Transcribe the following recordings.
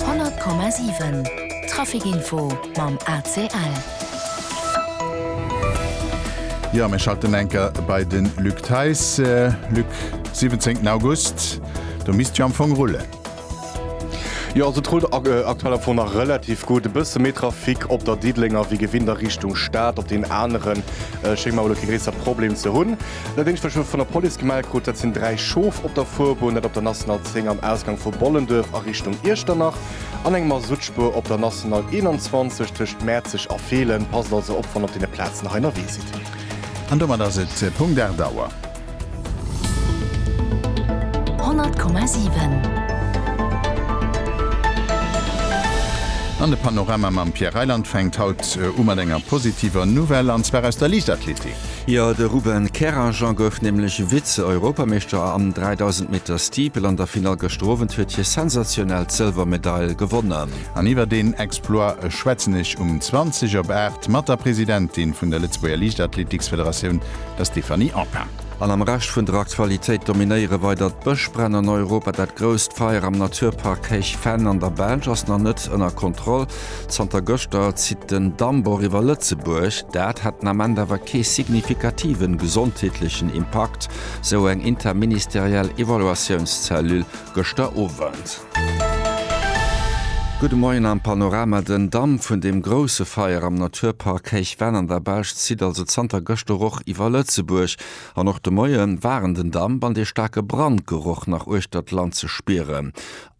100,7 Trafic Info mam ACL. Jo mir schalten enker bei den Luc Theis. Luc 17 August do misst jo am Fong rullen. Jo also et rullt aktuell am Fong nach relativ gutt. E bësse méi Trafic op der Diddelenger wéi gewinnt a Richtung Stad. Op den aneren schéngt mer elo kee gréisser Problem ze hunn. Nodeems mech elo vun der Police gemellt krut, dat sinn dräi Schof op der Fuerbunn, dat op der National 10 am Ausgang vu Bollenduerf a Richtung Iechternach, an eng Masuttspuer op der National 21 tëscht Mäerzeg a Feelen. Passt also op, wann op deene Plazen nach ennerwee sidd. An domat ass et Punkt 8 Auer. 100,7. An de Panorama mam Pierre Reyland fänkt haut u mat enger positiver Nouvelle, an zwar aus der Liichtathletik. Jo, de Ruben Kerranger gouf nämlech Vize-Europameeschter am 3000 Meter Steeple an der Finall. Gëschter Owend huet hie sensationell d'Sëlwermedail gewonnen. An iwwer deen Exploit schwätzen ech um 20 op 8 mat der Presidentin vun der Lëtzebuerger Liichtathletiksfederatioun, der Stéphanie Enckin. An am Rescht vun der Aktualitéit dominéiere weider d'Bëschbränn an Europa. Dat grousst Feier am Naturpark Héich Venn an der Belsch ass nach net ënner Kontroll. Zanter gëschter zitt den Dammbor iwwer Lëtzebuerg. Dat hätt den Ament awer kee signifikativen gesondheetlechen Impakt, sou eng interministeriell Evaluatiounszellule gëschter Owend. Gudde Moien am Panorama. Den Damm vun dem grousse Feier am Naturpark Héich Venn an der Belsch zitt also zanter gëschter och iwwer Lëtzebuerg. An och de Moie waren den Damp an de staarke Brandgeroch nach uechter d'Land ze spieren.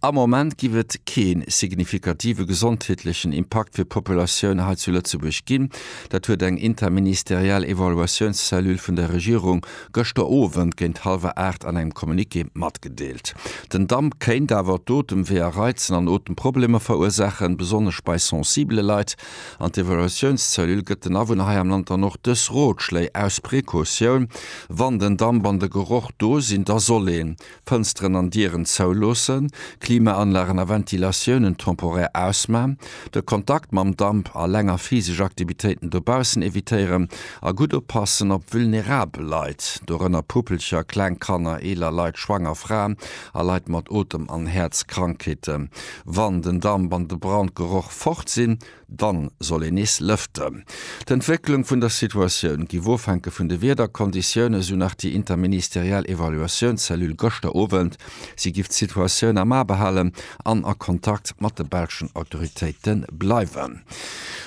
Am Moment giff et keen signifikative gesondheetlechen Impakt fir d'Populatioun hei zu Lëtzebuerg ginn. Dat huet eng interministeriell Evaluatiounscellule vun der Regierung gëschter Owend géint hallwer 8 an engem Communiqué matgedeelt. Den Damp kéint awer d'Otemweeër reizen an Otemproblemer verursaachen, besonnesch bei sensibele Leit. An d'Evaluatiounscellule gëtt den Awunner hei am Land dann och dës Rotschléi aus Precautioun, Wann den Damp an de Geroch do sinn, da soll een, Fënsteren an Dieren zouloossen, Klimaanlagen a Ventilatiounen temporaire ausman, de Kontakt mam Damp a länger physesch Aktivitéiten dobaussen evitéieren a gutt oppassen op vulnerabel Leit, dorënner Puppelcher, kleng Kanner, eeler Leit, schwanger Fraen a Leit mat Otem an Häerzkrankheeten. Wann den Damp an de Brandgeroch fort sinn, Dann soll een nees lëften. D'Entwécklung vun der Situatioun giff ofhänke vun de Wiederkonditiounen, sou nach déi interministeriell Evaluatiounscellule gëschter Owend. Si giff d'Situatioun am A behalen an a Kontakt mat de belschen Autoritéite bleiwen.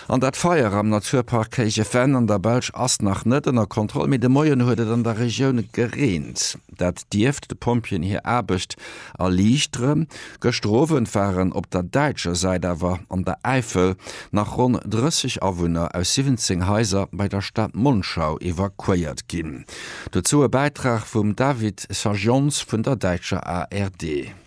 An dat Feier am Naturpark Kéigefen an der Belsch ass nach net ënner Kontroll, mee de Moien huet et an der Regioun gereent. Dat dierft de Pompjeeën hir Aarbecht erliichteren. Gëschter Owend waren op der däitscher Säit awer an der Äifel nach ronn 30 Awunner aus 17 Haiser bei der Stad Monschau evakuéiert ginn. Dozou e Bäitrag vum David Sajons vun der däitscher ARD.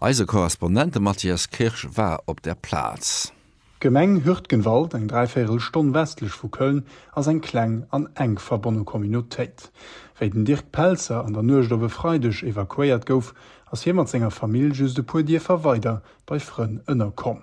Eise Korrespondent, de Matthias Kirsch, war op der Plaz. D'Gemeng Hürtgenwald, eng dräivéirel Stonn westlech vu Köln, ass eng kleng an enk verbonne Communautéit. Wéi den Dirk Pelzer an der Nuecht op e Freideg evakuéiert gouf, ass hie mat senger Famill just e puer Dierfer weider bei Frënn ënnerkomm.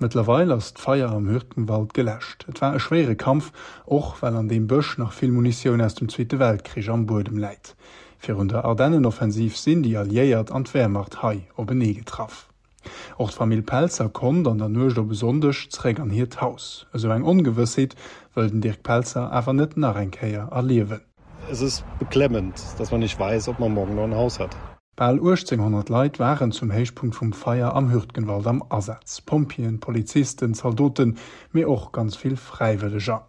Mëttlerweil ass d'Feier am Hürtgenwald geläscht. Et war e schwéiere Kampf, och well an deem Bësch nach vill Munitioun aus dem Zweete Weltkrich am Buedem läit. Virun der Ardennenoffensiv sinn déi Alliéiert an d'Wehrmacht hei openee getraff. Och d'Famill Pelzer konnt an der Nuecht op e Sonndeg zeréck an hiert Haus. Esou eng Ongewëssheet wëll den Dirk Pelzer awer net nach eng Kéier erliewen. Es ist beklemmend, dass man nicht weiß, ob man morgen noch ein Haus hat. Bal 1800 Leit waren zum Héichpunkt vum Feier am Hürtgenwald am Asaz, Pompjeeën, Polizisten, Zaldoten, mee och ganz vill Fräiwëlleger.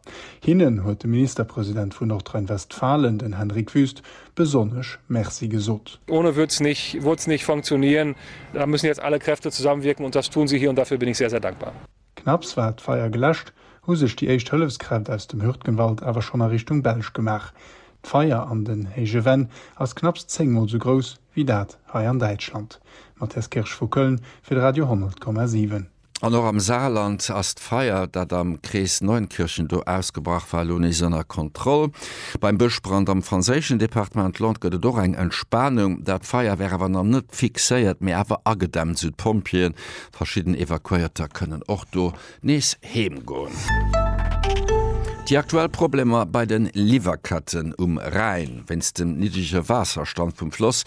Hinnen huet de Ministerpresident vun Nordrhein-Westfalen, den Henrik Wüst, besonnesch Merci gesot. Ohne würd's nicht, würd's nicht funktionieren. Da müssen jetzt alle Kräfte zusammenwirken, und das tun sie hier, und dafür bin ich sehr, sehr dankbar. Knapps war d'Feier geläscht, hu sech déi éischt Hëllefskräft aus dem Hürtgenwald awer schonn a Richtung Belsch gemaach. D'Feier an den Héije Venn ass knapps 10 mol sou grouss wéi dat hei an Däitschland. Mathias Kirsch vu Köln fir de Radio 10,7. An och am Saarland ass d'Feier, dat am Krees Neunkirchen do ausgebrach war, elo nees ënner Kontroll. Beim Bëschbrand am franséischen Departement Lot gëtt et och eng Entspanung. Dat Feier wär awer nach net fixéiert, mee awer agedämmt, sou d'Pompjeeën. Verschidden Evakuéierter kënnen och do nees heem goen. Déi aktuell Problemer bei den Liwwerketten um Rhäin wéinst dem niddrege Waasserstand vum Floss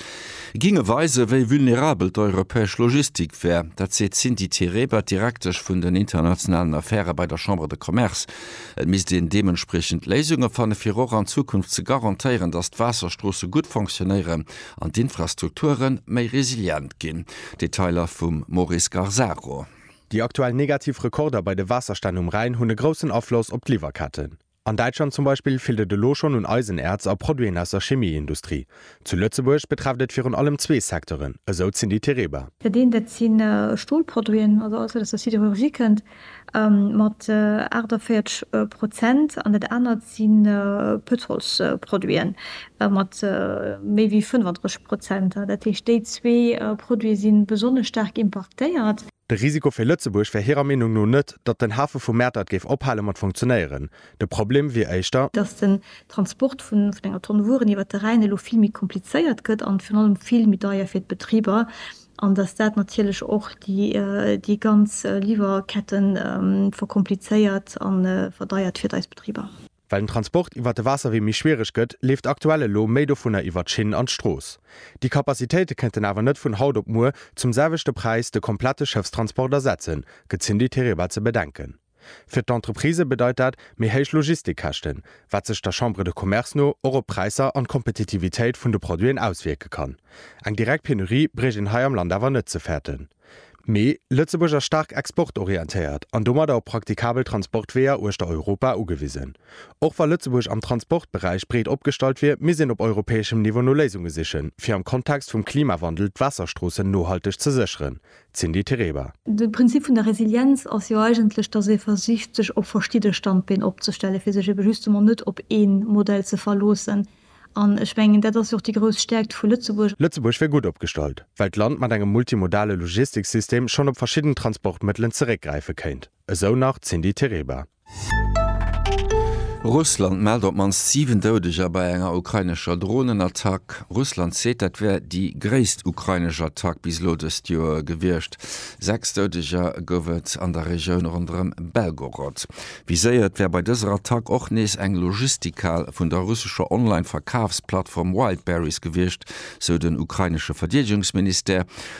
géinge weisen, wéi vulnerabel d'europäesch Logistik wär. Dat seet d'Cindy Tereba, Direktesch vun den internationalen Affäre bei der Chambre de Commerce. Et misst een deementspriechend Léisunge fanne fir och an Zukunft ze garantéieren, datt d'Waasserstroosse gutt fonctionéieren an d'Infrastrukture méi resilient ginn. Detailer vum Maurice Garzaro. Déi aktuell negativ Rekorder bei de Waasserstänn um Rhäin hunn e groussen Afloss op d'Liwwerketten. An Däitschland zum Beispill feelt et elo schonn un Eisenäerz a Produiten aus der Chemieindustrie. Zu Lëtzebuerg betrefft et virun allem zwee Secteuren, esou d'Cindy Tereba. Dat eent dat si Stolproduiten, also alles wat aus der Sidérurgie kënnt, mat 48 Prozent an dat anert si Pëtrolsproduiten mat méi wéi 35 Prozent. Dat heescht, déi zwee Produite si besonnesch staark impaktéiert. De Risiko fir Lëtzebuerg wär hirer Meenung no net, datt den Hafe vu Mäertert géif ophale mat funktionéieren. De Problem wier éischter. Datt den Transport vun enger Tonn Wueren iwwert de Rhäin elo vill méi komplizéiert gëtt an virun allem vill méi deier fir d'Betriber. an dass dat natierlech och déi ganz Liwwerkette verkomplizéiert a verdeiert fir eis Betriber. Well den Transport iwwert de Waasserwee méi schwiereg gëtt, leeft aktuell elo méi dovunner iwwert d'Schinn an d'Strooss. Déi Capacitéite kënnten awer net vun haut op muer zum selwechte Präis de komplette Schëffstransport ersetzen, gëtt d'Cindy Tereba ze bedenken. Fir d'Entreprisë bedeit dat méi héich Logistikkäschten, wat sech der Chambre de Commerce no och op d'Präisser an d'Kompetitivitéit vun de Produiten auswierke kann. Eng direkt Penurie bréicht een hei am Land awer net ze fäerten. Mee Lëtzebuerg ass staark exportorientéiert an domadder op praktikabel Transportweeër uechter Europa ugewisen. Och wa Lëtzebuerg am Transportberäich breet opgestallt wier, misst een op europäeschem Niveau no Léisunge sichen, fir am Kontext vum Klimawandel d'Waasserstroossen nohalteg ze sécheren, D'Cindy Tereba. De Prinzip vun der Resilienz ass jo eigentlech, datt ee versicht sech op verschidde Standbeen opzestellen, fir sech ebe justement net op ee Modell ze verloossen. An ech mengen, dat ass jo och déi grouss Stäerkt vu Lëtzebuerg. Lëtzebuerg wier gutt opgestallt, well d'Land mat engem multimodale Logistiksystem schonn op verschidden Transportmëttelen zeréckgräife kéint. Esou nach d'Cindy Tereba. Russland mellt op d'mannst 7 Doudeger bei enger ukrainescher Dronenattack. Russland seet, dat wär déi gréisst ukrainesch Attack bis elo dëst Joer gewiescht. Sechs Doudeger gouf et an der Regioun ronderëm Belgorod. Viséiert wär bei dëser Attack och nees eng Logistikhal vun der russescher Online-Verkafsplattform Wildberries gewiescht, sou den ukrainesche Verdeedegungsministère.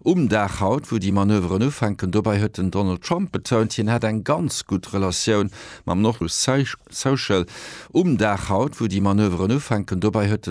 Um Dag haut, wou déi Manöveren ufänken. Dobäi huet den Donald Trump betount, hien hätt eng ganz gutt Relatioun mam Nordkorea. Um Dag haut, wou déi Manöveren ufänken. Dobäi huet den.